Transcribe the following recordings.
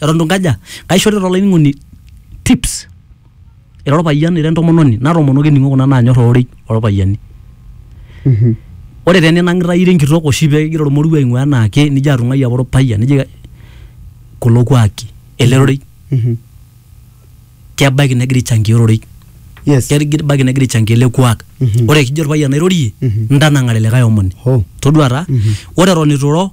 eton itu nkaja kaishorita olainining'oni tips ira orpayian ira entomononi natoomonoki ening'o kuna naanyorr ororei orpayiani ore taa eninang'ita ira enkitok oshi pekigira ormoruo aing'ua enaake nijo atung'ai apa orpayian nijo kulo kuaki ele rorei kebaiki negira aichangia ororei yes kebaiki negira aichangia ele kuak Mhm. ore kijo orpayian airorie Mhm. ntanang'are likae omoni Ho. todua taa ore eton itu iro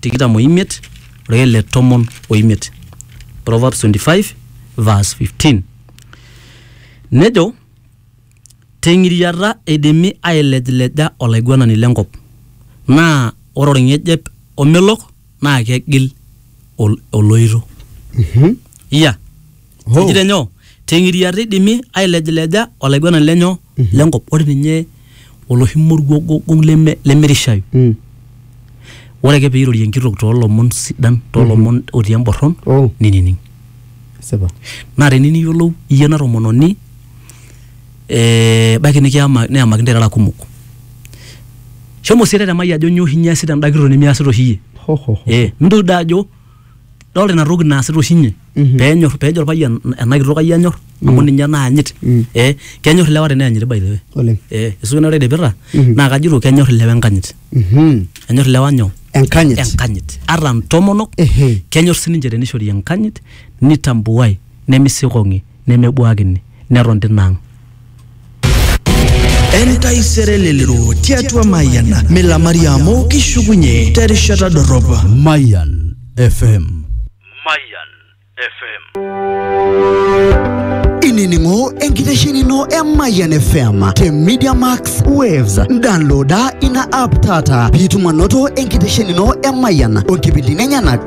tikitam oimiet orake le tomon oimiet Proverbs 25 verse 15 nejo teng'iriata eidimi ailejleja olaiguanani lenkop naa ore orng'ejep omelok naa kegil ol- oloito iya Hoo. Ejito nyoo? Teng'iriata eidimi ailejileja olaiguanani lenyo lenkop. Ore ninye oloshi moruo gogong leme lemerishayu. Mm. Ore ake peirorie enkitok toolomon sidan, toolomon otii emborron, Oh. ninining. Sipa. Naa tene niyiolou iyie ena tomononi eh, ebaiki nikiyama neyamaki ntae irara kumok. Shomo sii tetemai ajo nyoo oshi inye easita enda kitok nimiasita oshi iyie. Ho, ho, ho. Eh, mintoki doi ajo dolta ina toki naasita oshi inye Mhm. penyor pejo orpayian ena kitok ai anyor amu ninye naanyit Mm. eh kenyor ilewa teneyanyit by the way oleng eh isuki ina redepita Mhm. naa kajito kenyor ilewa enkanyit Mhm. enyor ilewa nyoo enkanyit enkanyit ata ntomonok Ehe. kenyor sininche tenishori enkanyit nitambuai nemisikong'i nemebuakini neton tina ang. Entaisere elelero tiatua Mayian milamari amu kishukunye terishata dorrop. Mayan FM. Mayan FM. Inining'o enkitesheni ino e Mayian FM te Media Max Waves. Downloada ina app taata piitum anoto enkitesheni ino e Mayian o nkipindini enyenak